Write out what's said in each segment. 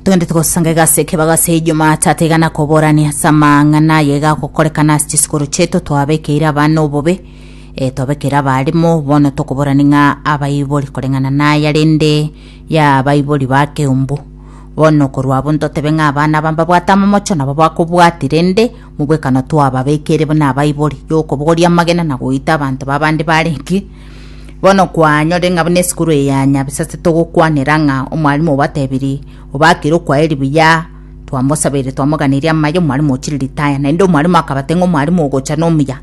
togende togosanga egasi ekebago ase ijuma tata igana koborania ase amang'ana aye gagokorekana ase chisikuru cheto twabekeire abana obobe e, twabekeire abarimo bono tokoborani ng'a abaibori koreng'ana naya rende ya abaibori ba keumbu bono korwa abwo ntotebe ng'a abana aba mbabwate amamocho nabo bakobwati rende mobwekano twababekeire buna abaibori yokobogoria amagena na goita abanto babande barenge Bono kwanyorire ng'a buna esukuru eye ya nyabisa ase togokwanera ng'a omwalimu obatebiri obakire okwaeri buya twamosabeire twamoganirie amaye omwalimu ochire ritaya naende omwalimu akabate ng'a omwalimu ogocha nomuya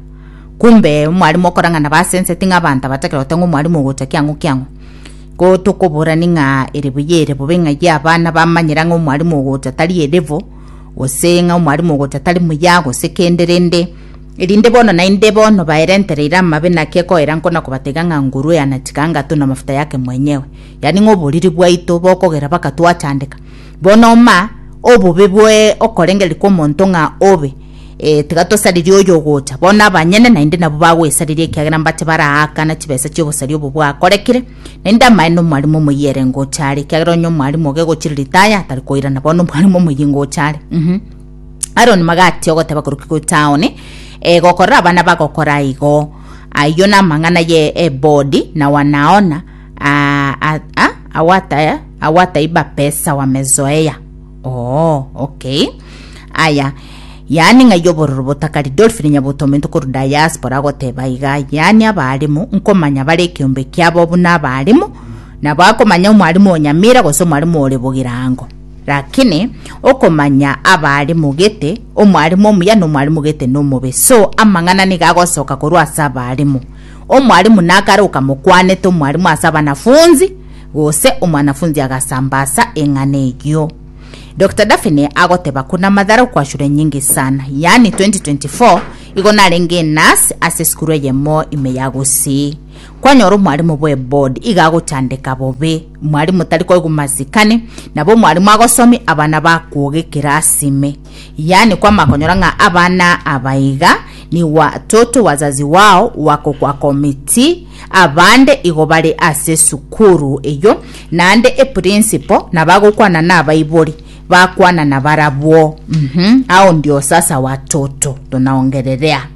kumbe omwalimu okorang'ana basenseti ng'a abanto abatagera gote ng'a omwalimu ogocha kiang'o kiang'o ko tokoborani ng'a ere buya ere bobe ng'a ye abana bamanyera ng'a omwalimu ogocha tari erevo gose ng'a omwalimu ogocha tari muya gose kende rende Erinde bono naende bono baerentereire amabe naki ekoera nkona kobatega ng'a nguru eana chikangato na mafuta yake mwenyewe, yani ng'a oboriri bwaito bokogera baka twachandeka. Bono ma obobe bwe okorengereria kw'omonto ng'a obe, e, tiga tosaririe oyo ogocha. Bono abanyene naende nabo bagwesariria ekiagera mbache baraakana chibesa chi'obosari obo bwakorekire. Naende amaene omwarimu omoyio ere ngocha are, ekiagera onye omwarimu oge gochiriri taya atari koirana, bono omwarimu omoyio ngocha are. Uh-huh. Aroni magati ogoteba koroki go taoni, e, gokorora abana bagokora igo. Ayio namang'ana ye Ebodi na Wanaona, a, a, a, awata awatai bapesa wa Mezoea. Oo, okay. Aya, yaani ng'ai obororo botakari Dolphin Nyabuto omonto korwa diaspora agoteba iga, yaani abaalimu nkomanya bare ekeombe kiabo buna abaalimu, nabo akomanya omwalimu o Nyamira gose omwalimu ore Bogirango. Rakini okomanya abaare mogete, omwalimu omuya na omwalimu gete nomobe, so amang'ana nigo agosoka korwa ase abalimu. Omwalimu nakare okamokwanete omwalimu ase abanafunzi, gose omwanafunzi agasamba asa eng'ana eyio. Doctor Daphne agoteba ko namadhara okwachura nyingi sana, yaani 2024 igo narenge enurse ase esukuru eyemo ime ya gusii. Kwanyora omwalimu bw'eboard iga agochandeka bobe, omwalimu tari koigwa masikani, nabo omwalimu agosomi abana bakwoga ekerasi ime. Yaani kwama konyora ng'a abana aba iga nigo watoto wazazi wao wakokwa committee abande igo bare ase esukuru eyio naende eprinciple nabo agokwana nabaibori bakwana nabarabwo mm-hmm. Hao ndio sasa watoto, tunaongererea.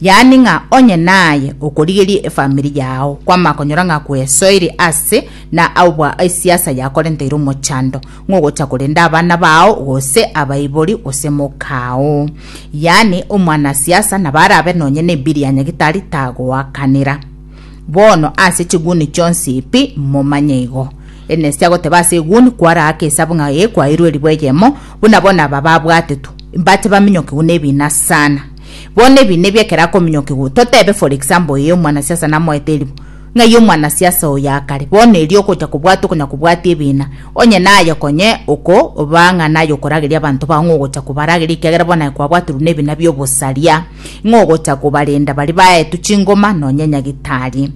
yaani ng'a onye naye okorigeria efamiri yao kwama konyora ng'a kwesoiri ase na aubwa esiasa yakorenteire omochando ng'ogocha korenda abana bao gose abaibori gose mokao yaani omwana siasa nabo arabe nonye na ebiri ya nyagitari tagoakanera bono ase chiguni chionsi pi momanye igo enesi agoteba ase eguni kwaraaka esabu ng'a ee kwairwe eribo eyemo buna bono aba babwatetwe mbache baminyokigwe nebina sana Bono ebi nebio ekero akominyokigwa, totebe for example ee omwanasiasa namoete eribo, ng'ai omwanasiasa oyo akare, bono erio ogocha kobwatwa konya kobwatia ebiina, onye naye konye oko oba ng'a naye okorageria abanto bao ng'a ogocha kobarageria ekiagera bono aye kwabwaterwe nebina biobosaria, ng'a ogocha kobarenda baria baetwe chingoma nonye nyagetari.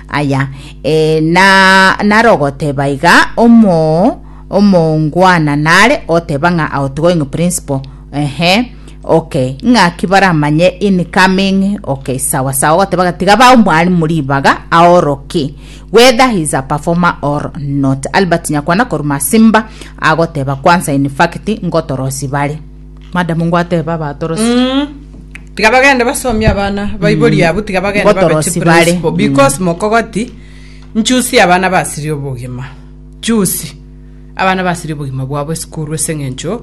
Aya ee na nare ogoteba iga omo omoongwana nare oteba ng'a aotigwe ng'a principle ehe. Okay ng'aki baramanye in coming okay sawa sawa goteba ga tiga ba omwalimu ribaga aoroke whether he is a performer or not albert nyakwana koruma simba agoteba kwanza in fact ngotorosi bare madam ngwateba batorosi Mm. tiga bagende basomie abana baibori abwo tiga bagende babe Botorosi chi bare. principal, because mokogoti nchusi abana basiri obogima chusi abana basiri obogima bwabo esukuru ase eng'encho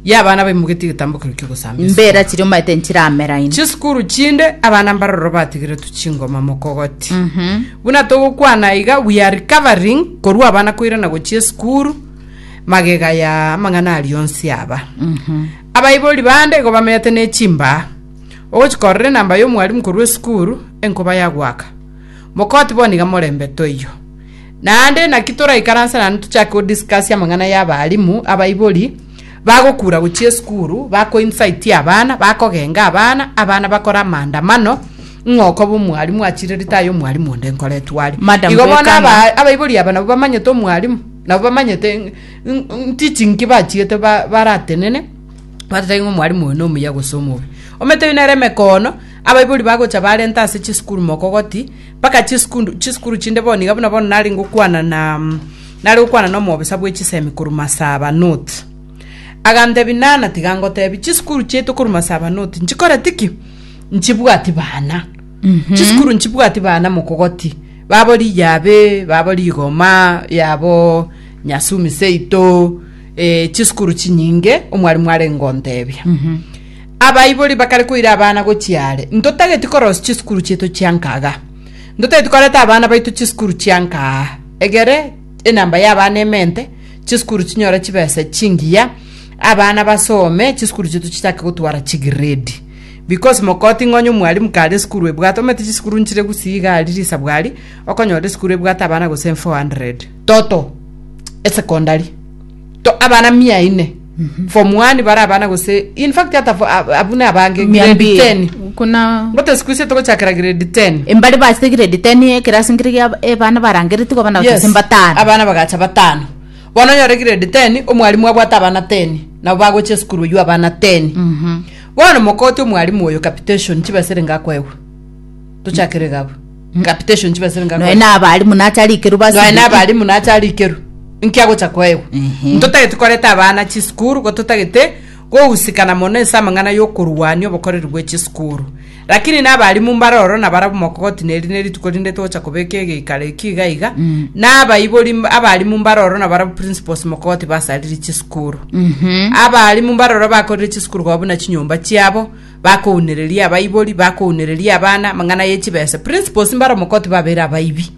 y'abana baimogetie egetambo keria ki'ogosamba esukuru. Mbera chiria omanyete nchirameraine. Chisukuru chinde abana mbaroro batigeretwe chingoma mokogoti. Buna togokwana iga we are recovering korwa abana koirana gochia esukuru magega ya amang'ana aria onsi aba. Abaibori bande igo bamenyete ne chimbaa. Ogochika ororo enamba y'omwarimu korwa esukuru enkoba yagoaka. Mokoti bono iga morembe toiyo. Naende naki toraikaranse naende tochake go discuss amang'ana ya abalimu, abaibori, bagokura gochia esukuru, bako incite abana, bakogenga abana, abana bakore amaandamano, ng'a okoba omwalimu achire rita aye omwalimu onde nkoretwe are. Madam Igo bono Bwekana. aba- abaibori aba nabo bamanyete omwalimu, nabo bamanyete ng- ng- teaching ki bachiete ba- baratenene, bateba ng'a omwalimu oyo nomuya gose omobe. Omanyete ebi nere emekoono, abaibori bagocha barenta ase chisukuru mokogoti, Mpaka chisikundu chisikuru chinde bono iga buna bono nare ngokwana na nare gokwana na omobisa bwe chisemi korwa Masaba North. Agantebi nana tiga ngotebi chisikuru chiaito korwa Masaba North nchikoreti ki? Nchibwati bana. Chisikuru nchibwati bana mokogoti. Babo Riyabe, babo Rigoma, yabo Nyasumi seito, eh, chisikuru chinyinge omwarimu are ngontebia. Abaibori bakare koira abana gochia are, Ntotageti korosia chisukuru chiaito chia nkaga. Ntotageti koreta abana baito chisukuru chia nkaa. Egere enamba y'abana emente, chisukuru chinyore chibesa chingiya, abana basome, chisukuru chiaito chichake gotwara chigredi. Because mokoti ng'a onye omwalimu kare esukuru ebwate, omanyete chisukuru nchire gusii iga aria risabu aria, okonyora esukuru ebwate abana gose 400. Toto, esekondari. To abana mia ine form one bara abana gose in fact ata fo- ab- abune abange Mia grade mbili. 10 Kuna ngote siku ise togochakera grade 10 embare base grade 10 ekerasi nkere gia ebana barangereti kwa bana batase mbatano. abana bagacha batano bono onyore grade 10 omwalimu abwate abana 10 nabo bagocha esukuru eywo abana 10 Mhm. bono mokote omwalimu oyo capitation chibasere ngakoegwa tochakere gabo Ngapitation chibese noe ngakore. n'abalimu nacharikerwa Noe basibi nabalimu nacharikerwa. Nkia gocha koegwa. Ehe. Ntotagete koreta abana chisukuru igo totagete gogusikana mono ase amang'ana y'okorwania obokoreri bwe chisukuru. Rakini nabalimu mbare ororo nabarabwo mokogoti na eri nerituko rinde togocha kobeka egeikaro ekio iga iga, na abaibori mb- abalimu mbare ororo nabarabwo principals mokogoti basaririe chisukuru. Abalimu mbare ororo bakorire chisukuru koba buna chinyomba chiabo, bakounereria abaibori, bakounereria abana amang'ana ye chibesa. Principals mbare omokoti babere abaibi.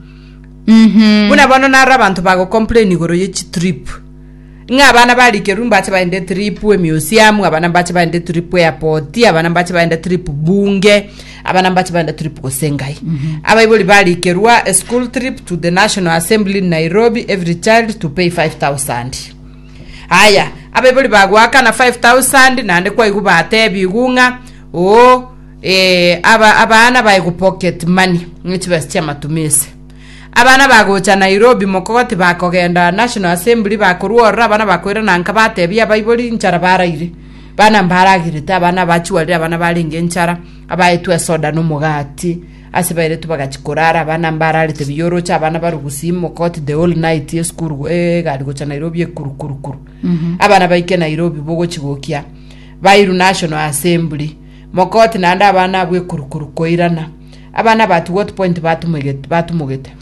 Buna bono naro abanto bagocomplain igoro ye chitrip. Ng'a abana barikerwa mbache baende trip emiusiamu, abana mbache baende trip airport, abana mbache baende trip bunge, abana mbache baende trip gose ngai. Abaibori barikerwa a school trip to the National Assembly in Nairobi, every child to pay 5000. Aye, abaibori bagoakana five thousand, naende kwaigwa batebiwu ng'a oo, ee, aba abana baigwa pocket money, ng'a chibesa chi'amatumisi. Abana bagocha Nairobi mokogoti bakogenda National Assembly bakorwa ororo abana bakoirana nka batebia abaibori nchara baraire. Bana mbaragirete abana abachwarire abana barenge nchara, abaetwe esoda na omogati. Ase baeretu bagachia korara abana mbararete biyoroche abana barugusi imokoti the whole night esukuru egari gocha nairobi ekurukurukuru abana baike nairobi bogochi gokia bairu national assembly mokoti naende abana abwo ekurukuru koirana abana abati what point batumege- batumogete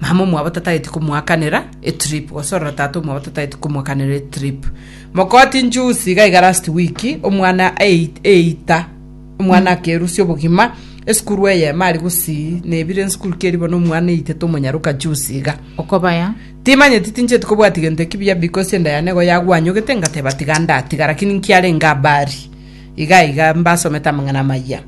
Mama omwabo tatageti komoakanera etrip gose ororo tata omwabo tatageti komoakanera etrip mokoti njusi iga iga last week omwana ei- eita omwana akerusia obogima esukuru eyemo ari gosii nebire nsukuru keri bono omwana eitete omonyaroka jusi iga okobaya timanyeti tincheti kobwati gento ekibuya because enda yane igo yagwanyogete ngateba tiga ndatiga lakini nkiarenge abari iga iga mbasomete amang'ana amaya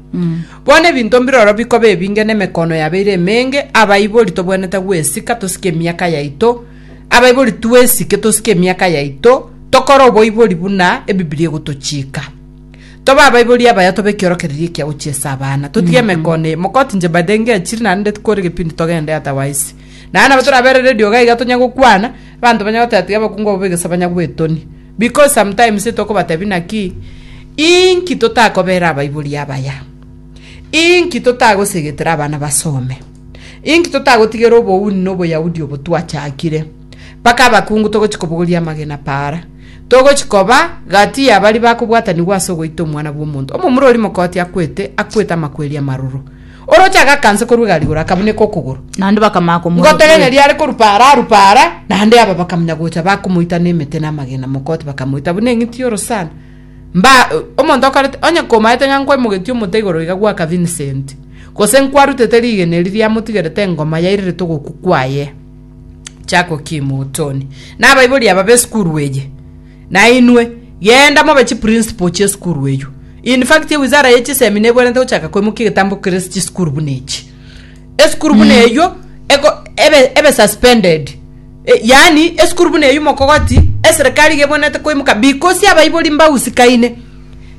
Bono ebinto mbiroro bikoba ebinge nemekono yabo ere emenge, abaibori tobwenerete gwesika tosike emiaka yaito, abaibori twesike tosike emiaka yaito, tokore oboibori buna Ebibilia egotochiika. Tobe abaibori abaya tobe ekiorokererio ekia gochiesa abana. Totige emekono eye. Mokoti inche by the way ngechire naende kore egepindi togende otherwise. Naende nabo toraberere rioga iga tonya gokwana, Abanto banyare gotatiga abakungu abwo b'egesabanya gw'etoni, because sometimes etokobatebia naki, Inki totakobera abaibori abaya? Inki totagosegetera abana basome? Inki totagotigera obouni na Oboyahudi obo twachakire? Mpaka abakungu togochi kobogoria amagena para, togochi koba gati ya baria bakobwatanigwa ase ogoita Omwana bw'omonto. Omomura oria mokoti akwete, akwete amakweri amaroro. Oroche agakansa korwa egari igoro, akabuneka okogoro. Naende bakamanya komoa Ngote gete okweri. riare korupa ara arupa ara, naende aba bakamunya gocha bakomoita nemete na amagena mokoti bakamoita buna eng'iti y'orosana. Mba omonto okorete onye komaete ng'a nkwaimogetie omote igoro iga gwaka Vincent, gose nkwarutete rigena eri riamotigerete engoma yairerete ogokwa kwaye. Jack Okimu, Otoni. Nabaibori aba b'esukuru eye. Nainwe, genda mobe chiprinsipal chi'esukuru eyio. In fact, ewizara ye chisemi nebwenerete gochaka koimokia egetambo kerase chisukuru buna echi. Esukuru buna eyio eko- ebe ebe suspended. E- Yaani, esukuru buna eyio mokogoti, eserekari iga ebwenerete koimoka because abaibori mbagusikaine.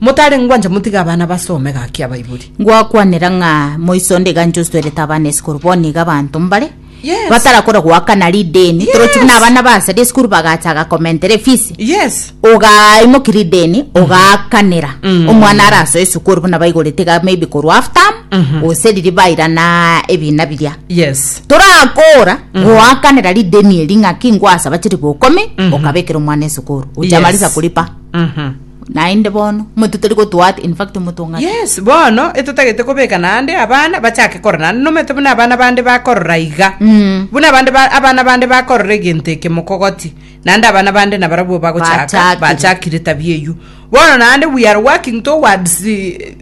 Motarengwa ncha motige abana basome gaki abaibori. Ngwakwanera ng'a moiso onde iga inche ostoerete abana esukuru, bono iga abanto mbare Yes. batarakora goakana rideni torochi buna abana basa risukuru bagachaga komentera efisi Yes. ogaimoki rideni ogaakanera omwana arasoe esukuru buna baigorete iga maybe korwa half term gose riria bairana ebina biria Yes. torakora goakanera rideni eri ng'aki ngwasaba chilifu okomi okabekera omwana esukuru ochamarisa Yes. kuripa Mhm. Naende bono, omonto tari gotoa ate, in fact, omonto ng'ake. Yes, bono etotagete kobeka naende abana bachake korora naende nomanyete buna abana bande bakorora iga Mm. buna abande ba- abana bande bakorora egento eke mokogoti naende abana bande nabarabwo bagochaka Bachakire. bachakire tabia eywo bono naende we are working towards eh,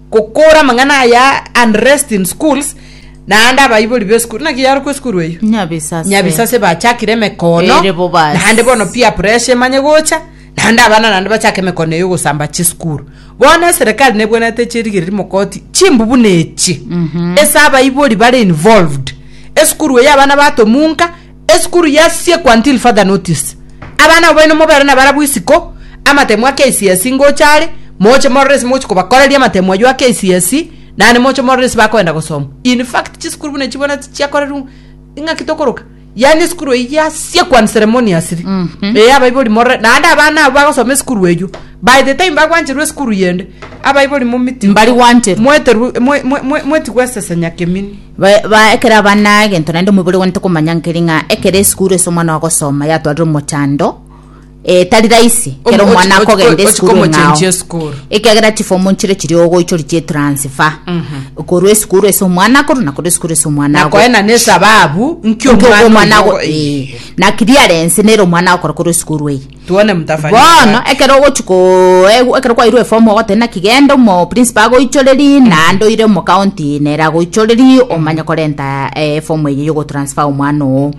gokora amang'ana aya unrest in schools naende abaibori b'esukuru naki yarokwa esukuru eywo Nyabisase. nyabisase bachakire emekono Ere bo basi. naende bono pia pressure emanye gocha naende abana naende bachake emekone eye ogosamba chisukuru bono eserekari nebwenerete chirigereri mogoti chimbubu na echi ase abaibori bare involved esukuru eye abana batomunka esukuru yasiekwa until further notice abana abo baino mobere na barabwo isiko amatemu a KCSE ngocha are moche morore ase mogochi kobakoreria amatemu aywo a KCSE naende moche morore ase bakoenda gosoma in fact chisukuru buna echi bono chiakorerwa ng'aki tokoroka yaani esukuru eyi yasia kwan ceremonious ri ee abaibori morore naende abana abo bagosoma esukuru eywo by the time bagwancherwa esukuru yende abaibori momiti Mbari gwancherwa. mweterwe mwe- mwe- mwe- mwetigwe esesenya kemini Ba- ba- ekero abana egento naende omobere one tokomanya nkeri ng'a ekero esukuru ase omwana ogosoma yatwarire omochando Eh, tari raisi kero Omo- omwana ochi- akogenda ochi- esukuru ochikomochenchia eng'ao esukuru. ekiagera chifomu nchire chiri ogoichori chie transfer korwa esukuru ase omwana akoru na korwa esukuru ase omwana ago. nakoena nesababu nkio Nki ogo omwana ago- eh, na clearance nere omwana agokora korwa esukuru eye tuone mtafanyika bono wapi. ekero ogochi ko- egu- ekero kwairwe efomu ogoteba naki genda omo principal agoichoreri naende oire omo county nere agoichoreri omanye korenta eh, efomu eye yogotransfer omwana oo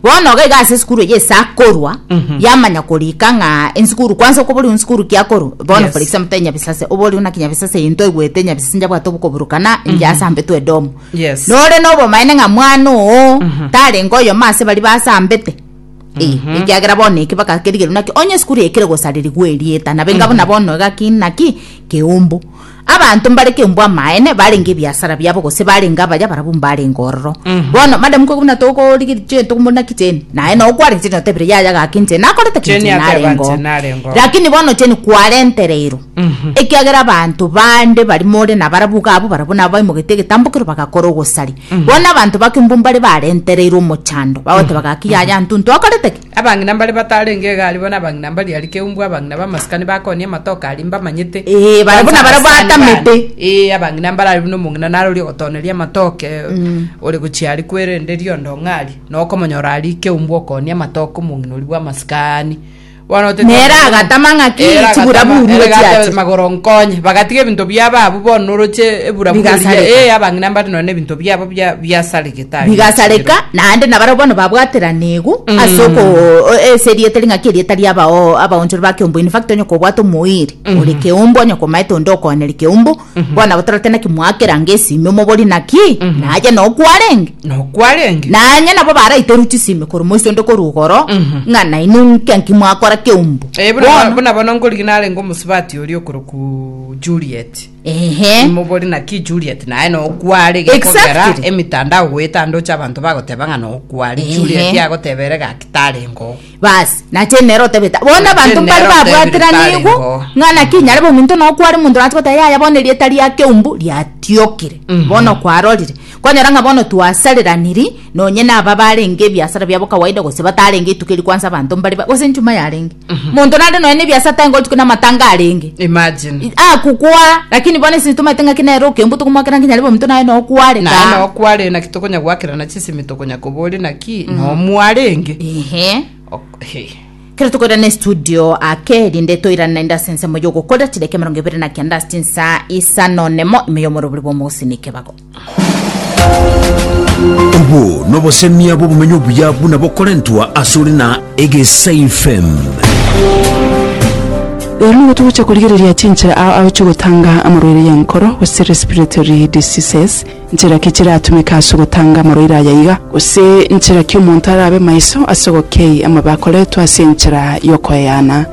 Bono iga iga ase esukuru eye ase akorwa Mhm. yamanya korika ng'a ensukuru kwanza okobori nsukuru kiakorwa bono Yes. for example te nyabisase obori buna kinyabisase eye ntoigwete nyabisase njabwate obokoburukana inche ase ambete edomu Yes. nore nobomaene ng'a mwana oo tarenge oyomo ase bari basambete Eh, ekiagera bono eke bagakerigerwa naki onye esukuru eye kere gosarerigwa erieta nabe inga buna bono iga ki naki keumbu Abanto mbare kembu amaene barenge ebiasara biabo gose barenge abaya barabwo mbarenge ororo. Bono madamu kwe buna togorigeria chionye togomorina ki Jane? Naye noo kwarenge Jane otebire yaya gaki inche nakorete ki Jane Jane ateba, narenge "Inche oo. narenge oo." Lakini bono Jane kwarentereirwe. Ekiagera abanto bande bari more nabarabwo iga abwo barabwo nabo baimogetie egetambo ekero bagakora ogosari. Bono abanto ba kembu mbare barentereirwe omochando bagoteba gaki yaya ntuntu akorete ki? Abang'ina mbare batarenge egari, bono abang'ina mba riari keumbu, abang'ina b'amasikani bakoonia amatoke aria mbamanyete. Ee, bare buna bare batamete. Ee, abang'ina mbare aria buna omong'ina naroria ogotooneria amatoke, ore gochia aria kwerende riondo ong'arie, na okomonyora aria keumbu okoonia amatoke omong'ina oria bw'amasikani. Bono otete- Nere agatama ng'aki Ere agatama, chiburaburu ere gochia agatebe, ache. magoro nkonye bagatiga ebinto biabo abwo bono noroche eburaburu Bigasareka. eria ee abang'ina mbare nonye na ebinto biabo bia- biasarigete bigasareka, naende nabarabwo bono babwateranigwe ase oko o- ase erieta eri ng'aki erieta ria abao- abaonchori ba keumbu in fact onye kobwate omoiri ore keumbu onye komaete onde okoaneri keumbu bono nabo torete naki mwakeranga esimi omobori naki naye nokwarenge nokwarenge nanye nabo baraiterwe chisimi korwa moiso onde korwa igoro ng'a nainwe nka nki mwakora keumbu Eh, buna- Bono, buna bono ngorigi narenge omosubati oria okoroku juliet Ehe. imobori naki Juliet naye nokware gekogera Exactly. emitandao goeta ndoche abanto bagoteba ng'a nokware Ehe. Juliet agotebere gaki tarengo basi nache nero otebeta bono Nache abanto mbare nero otebire babwateraneigwe tarengo. ng'a naki nyare bobe ominto nokware omonto nache goteba yaya bono erieta ria keumbu riatiokire Mhm. bono kwarorire kwanyora ng'a bono twasareraniri nonye naba barenge ebiasara biabo kawaida gose batarenge ituko eri kwansa abanto mbare ba- gose enchuma yarenge monto nande nonya nebiasa tari ngochikwa na matanga arenge imagine akukwa lakini bono ase tomanyete ng'aki nere okembu tokomwakera ngaki nyarebe omonto naye nokware naye taa nokware naki tokonya gwakerana chisemi tokonya kobori naki nomwarenge ehe Ok- hey. kero tokoirana estudio ake erinde toirane naende ase ensemo yogokorera chidaka emerongo ebere na kenda ase chinsa isano nemo ime yomorobori bwa omogusini ekebago Obwo nobosemia bw'obomenyo obuya buna bokorentwa asore na Egesaifm. Rero nigo togocha korigereria chinchera ao agochia ogotanga amarwaire y'enkoro, gose respiratory diseases, nchera ki chiratumeke ase ogotanga amarwaire aya iga, gose nchera ki omonto arabe maiso ase ogokei amabe akoretwe ase enchera y'okoeana.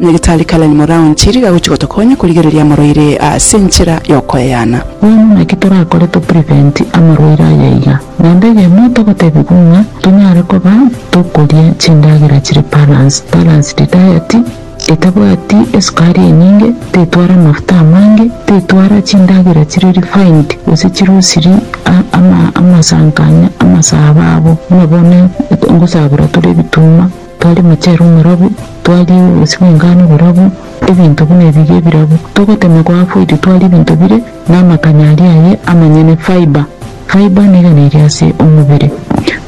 Nyagetari Karen Moraon Chiriga agochia gotokonya korigereria amarwaire ase enchera y'okoeana. Bono naki torakore to prevent amarwaire aya iga, Namba eyemo togotebigwa ng'a tonyare koba tokoria chindagera chire balanced, balanced diet, etabwati esukari enyinge, tetwara amafuta amange, tetwara chindagera chire refined gose chirusiri amasankanya amasabo abo, buna bono ngosabera tore ebituma. Twari mochero omorabwo, twari obobisi bw'engano oborabwo, ebinto buna ebiria ebirabwo. Togotema kwa afoiti twari ebinto bire namakanya aria aye amanyene, fibre. Fibre negena eria ase omobere.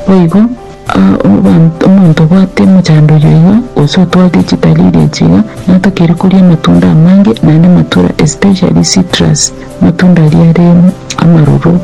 Boigo, abanto, omonto obwate mochando oyio iga, gose otwarire chitari eria echi iga, natokeire koria amatunda amange, naende amatura, especially citrus, amatunda aria are amaroro,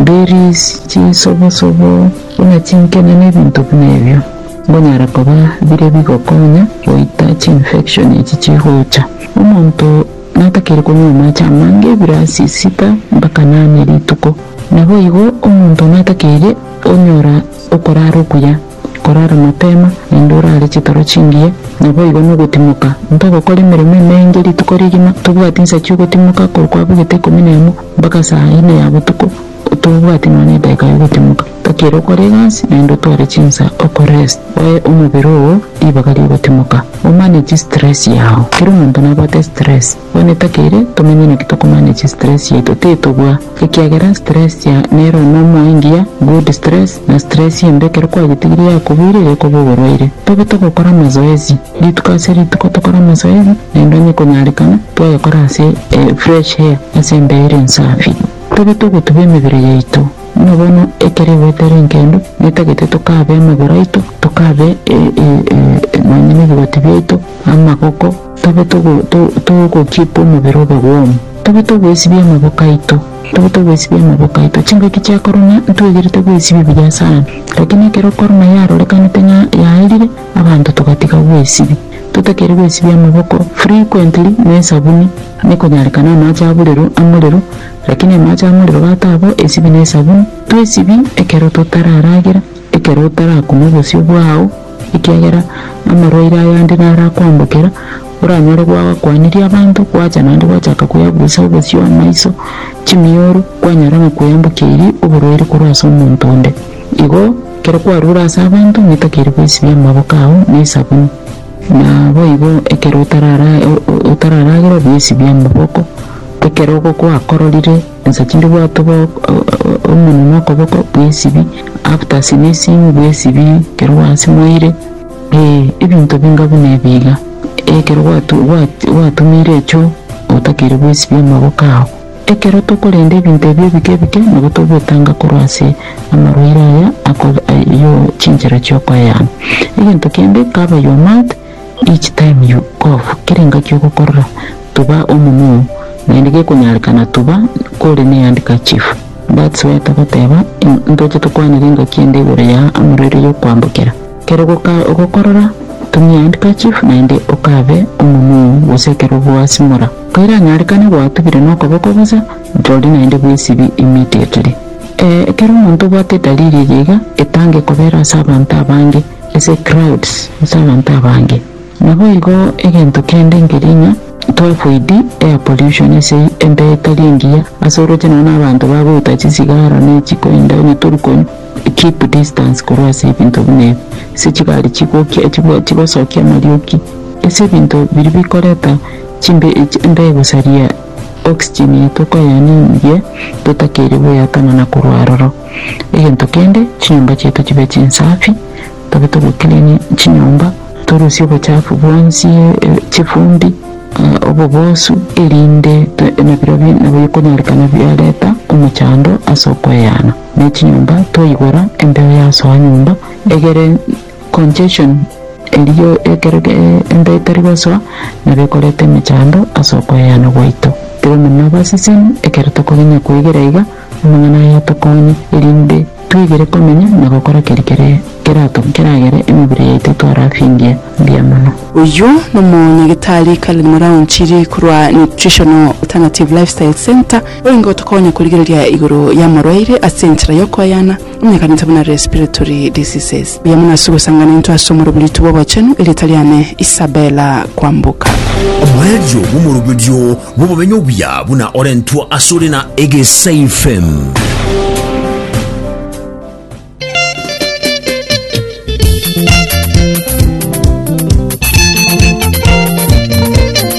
berries, chisobosobo, buna chinkena na ebinto buna ebio. Mbonyare koba bire bigokonya goita chiinfection echi chigocha. Omonto natakeire konywa amache amange ebirasi sita mpaka nane rituko. Naboigo omonto natakeire onyora okorara okuya, korara mapema naende orare chitoro chingiya, naboigo nogotimoka. Ntogokora emeremo emenge rituko rigima, tobwati nsa chiogotimoka korwa kwabugete ikomi nemo mpaka saa ine ya botuko. Tobwati nonya edaika yogotimoka, takera okore egasi, naende otware chinsa oko rest, oe omobere oo ribaga riogotimoka, omanage stress yao. Kera omonto nabwate stress, bono takere tomenye naki tokomanage stress yaito, titobua, ekiagera stress ya nero nomoa engiya, good stress, na stress embe ekero kwagetigire yakoboire egekoba oborwaire. Tobe togokora amazoezi, rituko ase rituko tokore amazoezi, naende onye konyarekana, twayakora ase fresh air, ase embeyo ere ensafi. Tari togotuba emebere yaito, buna bono ekero egwete ere enkendo, netagete tokabe amagoro aito, tokabe nonya nebigoti biaito, amagoko, tobe togokeep omobere obe warm. Tobe togoesibia amaboko aito, tobe togoesibia amaboko aito. Chingaki chia korona ntwegerete goesibia buya sana, lakini ekero korona yarorekanete ng'a yaerire, abanto togatiga goesibia. Totakeire goesibia amaboko frequently na esabuni. Nekonyarekana amache aburero amorero, lakini amache amorero batabo esibi ne esabuni. Twesibi ekero totararagera, ekero otarakuma obosio bwao, ekiagera amarwaire ayande narakwambokera, oranyore gwagakwanirie abanto, gwacha naende gwachaka kweaburusa obosio, amaiso, chimioro, kwanyara ng'a kweyambokia eiri oborwaire korwa ase omonto onde. Igo, ekero kwarure ase abanto, ng'etakeire gwesibia amaboko ao ne esabuni. Naboigo ekero otararagera ebiesi bi'amaboko, ekero ogokwa akororire ensa chinde bwatwe omonwe na okoboko bw'esibi, after sneezing bw'esibi ekero gwasimoire, ee ebinto binga buna ebi iga, ekero gwatumeire echoo otakere bw'esibi amaboko ao. Ekero tokorenda ebinto ebi ebike ebike, nabo togwetanga korwa ase amarwaire aya akore ayio chinchera chiokoeana. Egento kende, cover your mouth each time you cough, kera engaki ogokorora, tuba omonwa oo, naende gekonyarekana tuba kore ne handkerchief. That's why togoteba ntoche tokwanere engaki ende igoro ya amarwaire yokoambokera. Kero ogoka ogokorora, tumia handkerchief naende ocabe omonwa oo gose ekero ogoasimora. Koiranyarekane gwatubire nokoboko gose ntori naende bw'esibi emiti ekere. Ee, ekero omonto obwate edaliri eye iga, etange kobera ase abanto abange, ase crowds, ase abanto abange. Naboigo egento kende nkeria ng'a twafoidi air pollution ase embeyo etari engiya, ase oroche nonye na abanto bagoita chisigara ne chikoinda onye tori konywa, keep distance korwa ase ebinto buna ebi, ase chigari chigokia, chigosokia amarioki, ase ebinto biria bikoreta. Chimbe echi mbe gosaria oxygen eye tokoyaninirie totakeire goyatana na korwa aroro. Egento kende, chinyomba chiaito chibe chinsafi, tobe togo clean chinyomba, torusie obochafu bwonsi, chifumbi, obobosu erinde nabirobio nabwo bikonyarekana biareta omochando ase okoeana ne chinyomba twaigora embeo yasoa nyomba egere. Congestion, erio ekero enda etari gosoa, nabio ekoreta emechando ase okoeana gwaito. Tiri omonyene na obaseseni ekero tokogenya kwegera iga amang'ana aya atokonye erinde twegere komenya na gokora keri kere kerato keragere emebere yaito twarafingie mbuya mono. Oyio nomonyagitari Karen Muraunchiri korwa Nutritional Alternative Lifestyle Centre, orenge gotokonya korigereria igoro y'amorwaire ase enchera y'okoeana. Omonyakanisa buna respiratory diseases. Mbuya mono ase ogosangana intwe ase omoroberitwe bw'obochenu, erieta riane Isabella Kwamboka. Omoerio bw'omoroberio bw'obomenyo obuya buna orentwa ase ore na Egesaifem.